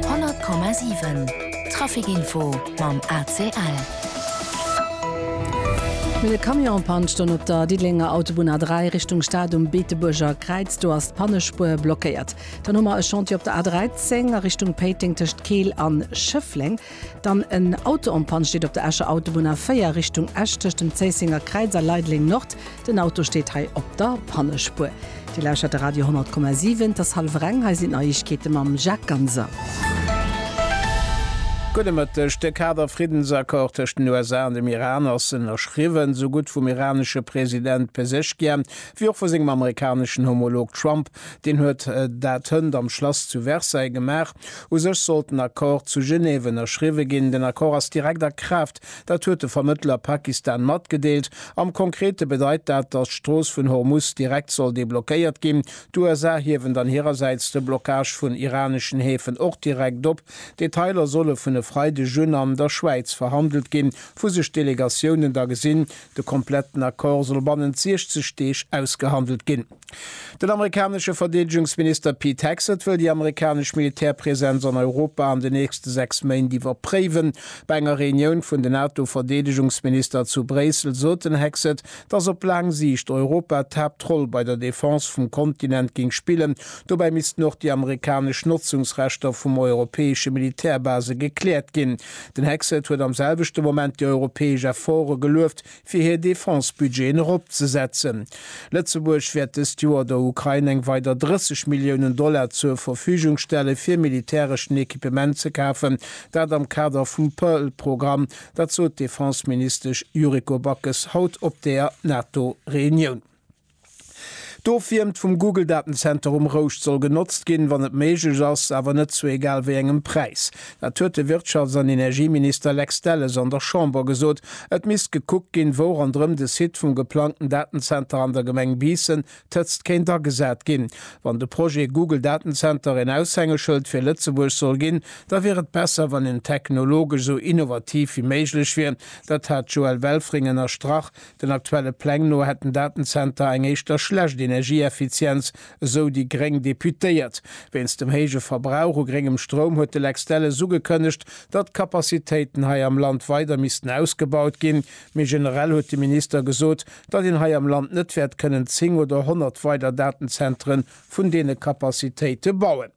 100,7 Trafic-Info mam ACL. Mir de Camion en Panne stoung op der Diddelenger Autobunn A3 Richtung Stad um Beetebuerger Kräiz. Do ass d'Pannespuer blockéiert. Dann hu mer e Chantier op der A13 a Richtung Péiteng tëscht Keel an Schëffleng. Dann en Auto en Panne steet op der Escher Autobunn A4 Richtung Esch tëscht dem Zéissenger Kräiz a Leideleng Nord. Den Auto steet hei op der Pannespuer. Dir lauschtert de Radio 10,7. Et ass hallwer eng. Hei sinn d'Neiegkeete mam Jacques Ganser. Gudde Mëtteg. De Kader-Friddensaccord tëscht den USA an dem Iran ass ënnerschriwwen, esou gutt vum iranesche President Pezeshkian, wéi och vu sengem amerikaneschen Homolog Trump, Deen huet dat hënt am Schlass zu Versailles gemaach. U sech sollt den Accord zu Genève ënnerschriwwe ginn. Den Accord ass direkt a Kraaft, dat huet de Vermëttler Pakistan matgedeelt. Am Konkrete bedeit dat, datt d'Strooss vun Hormuz direkt soll deblockéiert ginn. D'USA hiewen dann hirersäits de Blockage vun iraneschen Häfen och direkt op. Detailer solle vun e Freideg un an der Schwäiz verhandelt ginn, wou sech d'Delegatiounen da gesinn. De kompletten Accord soll bannent 60 Deeg ausgehandelt ginn. Den amerikanesche Verdeedegungsminister Pete Hegseth wëll déi amerikanesch Militärpresenz an Europa an de nächste 6 Méint iwwerpréiwen. Bei enger Reunioun vun den NATO-Verdeedegungsminister zu Bréissel sot den Hegseth, datt op laang Siicht Europa d'Haaptroll bei der Defense vum Kontinent géing spillen. Dobäi missten och déi amerikanesch Notzungsrechter vum europäesche Militärbase gekläert ginn. Den Hegseth huet am selwechte Moment déi europäesch Efforte gelueft, fir hir Defense-Budgeten eropzesetzen. Lëtzebuerg wäert dëst Joer der Ukrain eng weider 30 Milliounen Dollar zur Verfügung stellen, fir militäreschen Equipement ze kafen, dat am Kader vum Pearl-Programm. Dat sot d'Defense-Ministesch Yuriko Backes haut op der NATO-Reunioun. D'Ofwiermt vum Google Datenzenter um Rouscht soll genotzt ginn, wann et méiglech ass, awer net zu egal wéi engem Präis. Dat huet de Wirtschafts an Energieminister Lex Delles an der Chamber gesot. Et misst gekuckt ginn, wou ronderëm de Site vum geplangten Datenzenter an der Gemeng Biissen, Tëtzt, kéint agesat ginn. Wann de Projet Google Datenzenter een Aushängeschëld fir Lëtzebuerg soll ginn, da wier et besser, wann en technologesch esou innovativ wéi méiglech wier. Dat hat d'Joëlle Welfring ënnerstrach, Den aktuelle Pläng no hätt den Datenzenter eng éischter schlecht Energieeffizienz, esou déi gréng Deputéiert. Wéinst dem héije Verbrauch u gréngem Stroum huet de Lex Delles ugekënnegt, datt d'Capacitéiten hei am Land weider missten ausgebaut ginn. Méi generell huet de Minister gesot, datt een hei am Land net wäert kënnen 10 oder 100 weider Datenzentere vun deene Capacitéite bauen.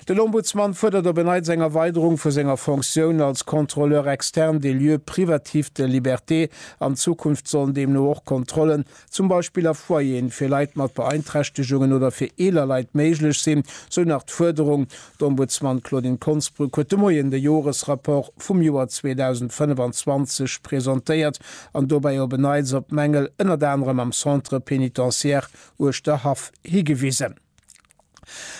Den Ombudsman fuerdert op en Neits eng Erweiderung vu senger Fonctioun als Contrôleur externe des lieux privatifs de liberté. An Zukunft sollen deemno och Kontrollen, zum Beispill a Foyeren fir Leit mat Beeinträchtegungen oder fir eeler Leit, méiglech sinn, sou nach d'Fuerderung. D'Ombudsman Claudine Konsbrück huet de Moien de Joresrapport vum Joer 2025 presentéiert an dobäi op en Neits op Mängel ënnert anerem am Centre pénitentiaire Uerschterhaff higewisen.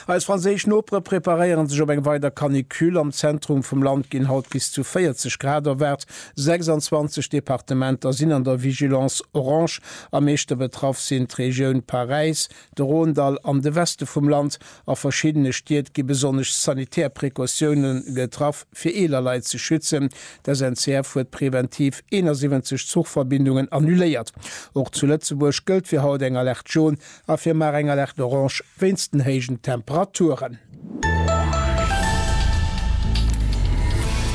Eis franséisch Nopere preparéieren sech op eng weider Canicule. Am Zentrum vum Land ginn haut bis zu 40 Grad erwaart. 26 Departementer sinn an der Vigilance orange. Am meeschte betraff sinn d'Regioun Paräis, de Rhône-Dall an de Weste vum Land. A verschiddene Stied gi besonnesch sanitär Precautioune getraff, fir eeler Leit ze schützen. D'SNCF huet preventiv 71 Zuchverbindungen annuléiert. Och zu Lëtzebuerg gëllt fir haut eng Alerte Jaune. A fir mar eng Alerte orange wéinst den héijen Temperaturen.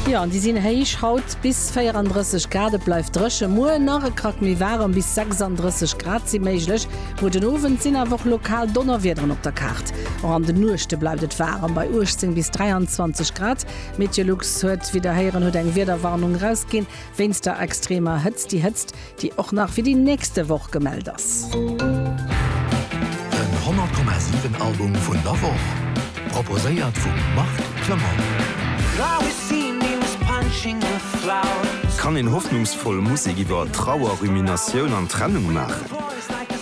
Jo, an déi sinn héich. Haut bis 34 Grad, et bleift dréchen. Muer nach e Krack méi waarem, bis 36 Grad si méiglech. Muer den Owend sinn awer och lokal Donnerwiederen op der Kaart. Och an de Nuechte bleift et waarem, bei 18 bis 23 Grad. Meteolux huet, wéi der héieren, huet eng Wiederwarnung erausginn wéinst der extremer Hëtzt. Déi Hëtzt déi och nach fir déi nächste Woch gemellt ass. Den 100,7 Album vun der Woch, proposéiert vum Marc Clement. Kann een hoffnungsvoll Musek iwwer Trauer, Ruminatioun an Trennung maachen?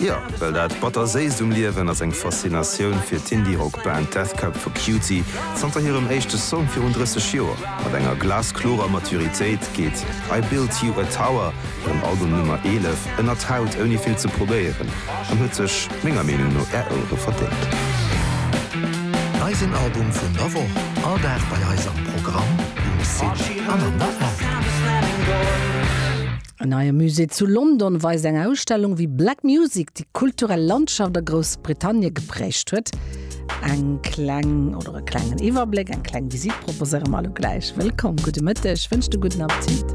Jo, well dat Batterséisst um Liewen ass eng Faszinatioun fir d'Indie-Rock-Band Death Cab for Cutie. Zanter hirem éischte Song virun 30 Joer, mat enger glasklorer Maturitéit, geet I Built You a Tower, hirem Album Nummer 11, ënnert d'Haut ouni vill ze probéieren, an huet sech menger Meenung no Är Ouere verdéngt. Eisen Album vun der Woch, all Dag bei eis am Programm, um Site an an der App. En neie Musée zu London weist eng Ausstellung, wéi Black Music déi kulturell Landschaft a Groussbritannie geprägt huet. Eng kleng oder e klengen Iwwerbléck, eng kleng Visitt proposéiere mer elo gläich. Wëllkomm, gudde Mëtteg, wënsch de gudden Appetit.